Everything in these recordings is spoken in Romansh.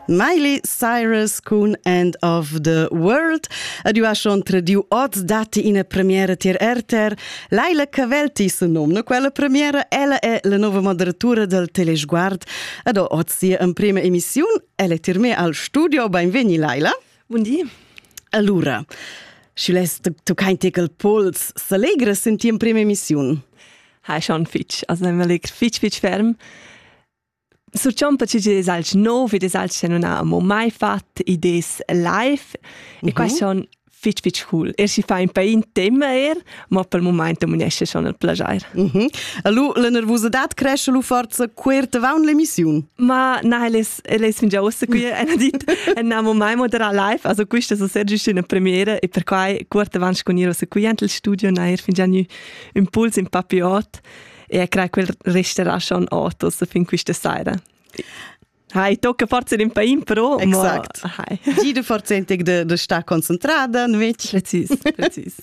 Miley Cyrus cun End of the World. Adiuaschon prediu oz datti ina premiera tier RTR. Laila Cavelti se nomna quella premiera. Ella è la nova moderatura del Telesguard. Ed oz sia emprima emissiun. Ella è tir me al studio. Benvegni Laila. Bun di. Allora, schi lässt tu kein Tickel Puls s'allegra sin tia emprima emissiun. Ha schon fitch, also immer fitch fitch ferm. Surchonta chi es alch nouv ed es alch chi nun ha amo mai fat idées live e mhm. quai schon fich fich cool. Er schi fa ün pain tema er, ma pel mumaint am unesce schon il plagier. Mm -hmm. Alu, la nervusadad cresce lu forza quert avaunt l'emissiun? Ma na, el es, el es fingià uossa qui, ena dit, ennamo mai moderà live, also quista es ser giüst üna premiera e perquai quert avaunt scu gnir uossa qui ant il studio, na er fingià gnü ün puls in papiot. e crei quel resterà schon autos fin questa sera. Hai, tocca forse in pain però. Exact. Ma, hai. Gi de forse entec de, de sta concentrada, invece. Precis, precis.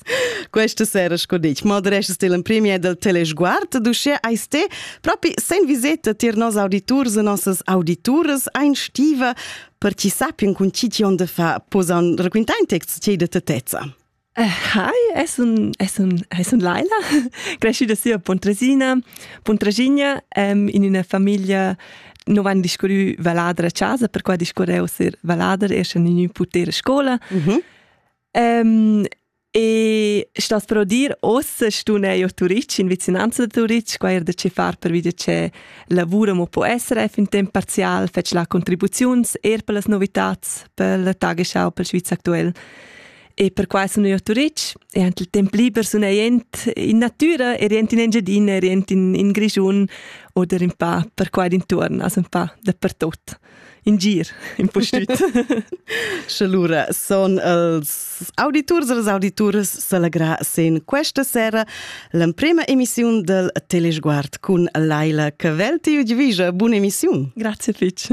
Questa sera, sco dici, moderesce stil in premier del telesguard, duce ai ste, propi sen viseta tir nos auditurs e nossas audituras ein stiva, per chi sappien con ci tion de fa posan raquintar in text ce de tetezza. Hi, es un, es un, es un Laila, cresciuta si a Pontresina, Pontresinia, um, in üna famiglia non van discurrü valadra a casa, per qua discurreu ser valader, eschan in ün puter a scola. Mhm. Um, e stas pro dir, ossa stun eu a Turic, in vicinanza da Turic, qua er da ce far per vide ce lavura mo po SRF in temp parzial, fetsch la contribuziuns, er per las novitats, per la tageschau, per Schweiz aktuell. E perquai sun eu a Turitg e anche il temp liber sun ei jent in natura e rient in Engiadina, rient in, in Grischun oder in pa per qua d'intuorn, also un pa dappertut. In gir, in po stüt. Sche lura son els auditurs e les auditurs s'allegra sen questa sera l'emprema emissiun del Telesguard cun Laila Cavelti. Io ti visa, bun emissiun. Grazie Fitch.